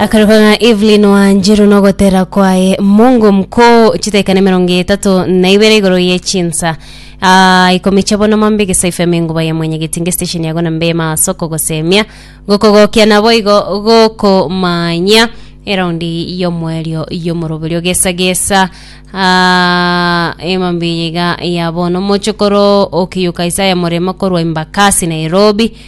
akarokana evelyn wanjiru nogotera kwaye mungu mkuu chitaikana emerongo etatu na ibere igoro ye chinsa Ah, ikomi chia bono mambe gesaifu emenguba ya mwenyegiti nge station yago na mbema soko gosemia gokogokia nabo igo gokomanya eraundi yomwerio yomoroberio gesa gesa Ah, emambe iga ya bono mochokoro okiyuka isaya morema korwa imbakasi nairobi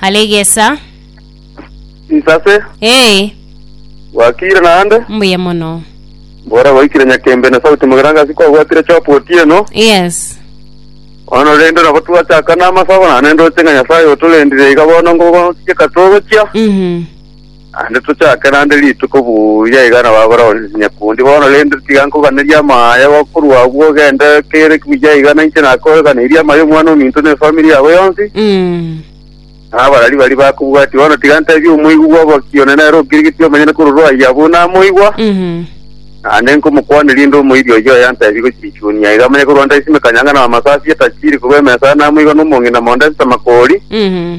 Halegesa. Nsase, Ee, gwakiire naende, mbuya mono. mbora gwaikire Nyakembe na Sauti Mogerangasi kwabwatire chopu otieno, Yes. bono rende nabo twachaka namasabo, naende ndoche ng'a Nyasaye otorendire iga bono ngogotiga togochia, Mhm. Naende tochake naende rituko buya iga nabagore onsi chinyakundi bono, rende tiga nkoganerie amaya igo korwa agwo ogende kere ki buya iga nainche nakoganeirie amaya omwana ominto ne efamiri yabo yonsi, Mm. na abarari baria bakobwatia. Bono tiga ntebie omoigwa bwa oboki one nere okirigetie omenyene korwa ayia abwo namoigwa, Mhm. naende nkomokwanera inde omoiri oyio oye antebie gochia echuoni aiga amanye korwa ndaisime kanyangana amasasi etachiri korwa emesa namoigwa nomong'ina mondo esesama kori, Mhm.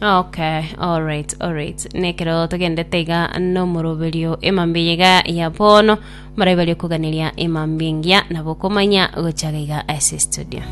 Okay, alright, alright. Nekero togendete iga nomoroberio emambi eye iga ya bono marabe bari koganeria emambi engiya nabo komanya gochaga iga ase studio.